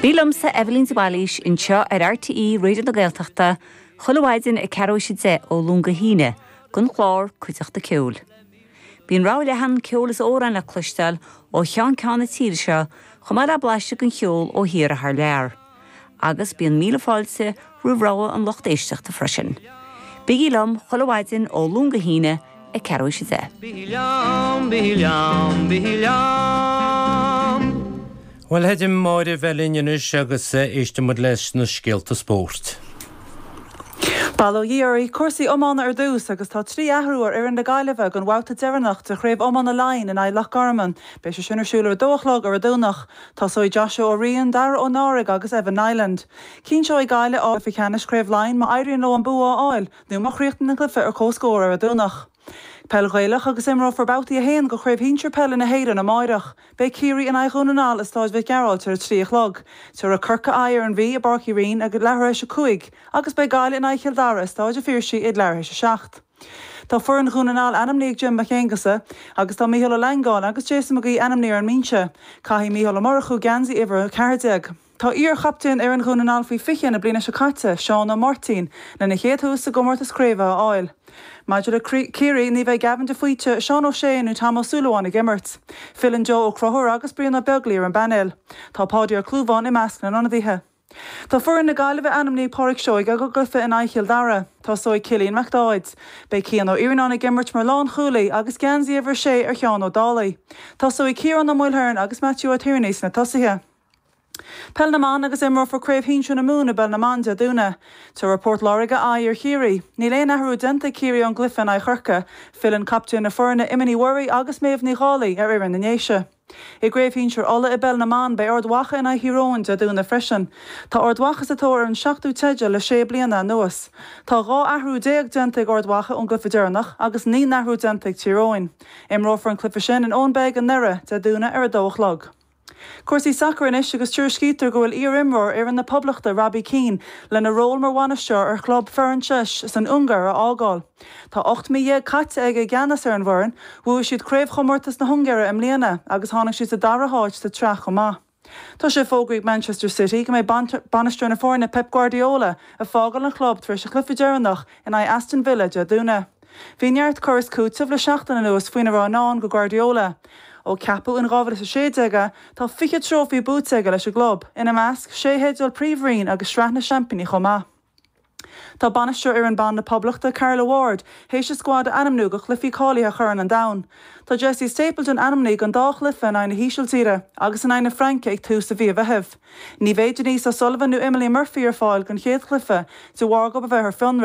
Bí liomsa, Evelyn de Bhailís, anseo ar RTÉ Raidio na Gaeltachta chuile mhaidin ag ceathrú is a deich ó Luan go hAoine don chlár Cuideachta Ceoil. Bíonn rogha leathan ceoil is amhráin le cloisteáil ó cheann ceann na tíre seo chomh maith le blaiseadh den cheol ó thiar is thar lear. Agus bíonn míle fáilte roimh rogha an lucht éisteachta freisin. Bígí liom chuile mhaidin ó Luan go hAoine ag ceathrú is a deich. Bígí liom, bígí liom, bígí liom. Bhuel, tá Heidi Máire linn anois agus éistfidh muid leis na scéalta spóirt. Bail ó Dhia oraibh. Cúrsaí iomána ar dtús agus tá trí athrú ar fhoireann na Gaillimhe don bhabhta deireanach de Chraobh Iomána Laighean in aghaidh Loch Garman. Beidh sé sin ar siúl ar a dó a chlog ar an Domhnach. Tosóidh Joshua Ó Riain, Dara Ó Náraigh agus Evan Niland. Cinnteoidh Gaillimh áit i gCeannais Craobh Laighin má éiríonn leo an bua a fháil nó má chríochnaíonn an cluiche ar comhscór ar an Domhnach. Peil Ghaelach agus imreofar babhtaí a haon de Chraobh Shinsir Peile na hÉireann amáireach. Beidh Ciarraí in aghaidh Dhún na nGall i Stáid Mhic Gearailt ar a trí a chlog, tiúrfaidh Corcaigh aghaidh ar an Mhí i bPáirc Uí Rinn ag leathuair théis a cúig agus beidh Gaillimh in aghaidh Chill Dara i Stáid an Phiarsaigh ag leathuair théis a seacht. Tá foireann Dhún na nGall ainmnithe ag Jim Mac Aonghusa agus tá Micheál Ó Leangáin agus Jason McGee ainmnithe ar an mbinse. Caithfidh Micheál Ó Murchú geansaí uimhir a ceathair déag. Tá iar-chaptaen fhoireann Dhún na nGall faoi fiche na bliana seo caite, Seán Ó Máirtín, lena chéad tús sa gcomórtas craoibhe a fháil. Maidir le Ciarraí ní bheidh Gavin de Faoite, Seán Ó Sé nó Tom Ó Súilleabháin ag imirt. Filleann Joe Ó Conchúir agus Brian Ó Beaglaoí ar an bpainéal. Tá Páidí Ó Clúmháin i measc na n-ionadaithe. Tá foireann na Gaillimhe ainmnithe ag Pádraic Seoige don gcluiche in aghaidh Chill Dara. Tosóidh Cillian McDaid. Beidh Cian Ó Iarnáin ag imirt mar lánchúlaí agus geansaí uimhir a sé ar Sheán Ó Dálaigh. Tosóidh Ciarán Ó Maoilchiaráin agus Matthew Ó Tiarnaigh sna tosaithe. Peil na mBan agus imreofar Craobh Shinsir na Mumhan i bpeil na mban Dé Domhnaigh. Tabharfaidh Port Láirge aghaidh ar Chiarraí. Níl aon athrú déanta ag Ciarraí ón gcluiche in aghaidh Chorcaigh. Filleann captaen na foirne Emma Ní Mhuirí agus Méabh Ní Dhálaigh ar fhoireann na nDéise. I gcraobh shinsir Uladh i bpeil na mban beidh Ard Mhacha in aghaidh Thír Eoghain Dé Domhnaigh freisin. Tá Ard Mhacha sa tóir ar an seachtú teideal le sé bliana anuas. Tá 12 athrú déanta ag Ard Mhacha ón gcluiche deireanach agus naoi n-athrú déanta ag Tír Eoghain. Imreofar an cluiche sin in Owenbeg i nDoire, Dé Domhnaigh ar a dó a chlog. Cúrsaí sacair anois agus tuairiscítear go bhfuil iar-imreoir fhoireann na Poblachta Robbie Keane lena ról mar bhainisteoir ar chlub Ferencváros san Ungáir a fhágáil. Tá ocht mí dhéag caite aige i gceannas ar an bhfoireann. Bhuaigh siad Craobhchomórtas na hUngáire i mbliana agus tháinig siad sa dara háit sa tsraith chomh maith. Tá sé fógraithe ag Manchester City go mbeidh bainisteoir na foirne Pep Guardiola ag fágáil an chlub tar éis a chluiche deireanach in aghaidh Aston Villa Dé Domhnaigh. Bhí neart cur is cúiteamh le seachtain anuas faoina raibh i ndán do Guardiola. Ó ceapadh in 2016 é, tá 20 trófaí buaite aige leis an gclub, ina measc sé theideal Príomhroinn agus Sraith na Seaimpíní chomh maith. Tá bainisteoir fhoireann ban na Poblachta, Carla Ward, tar éis a scuad a ainmniú do chluichí cáilithe Chorn an Domhain. Tá Jessie Stapleton ainmnithe don dá chluiche in aghaidh na hÍsiltíre agus in aghaidh na Fraince ag tús mhí an Mheithimh. Ní bheidh Denise O'Sullivan nó Emily Murphy ar fáil don chéad chluiche de bharr dóibh a bheith ar fionraí.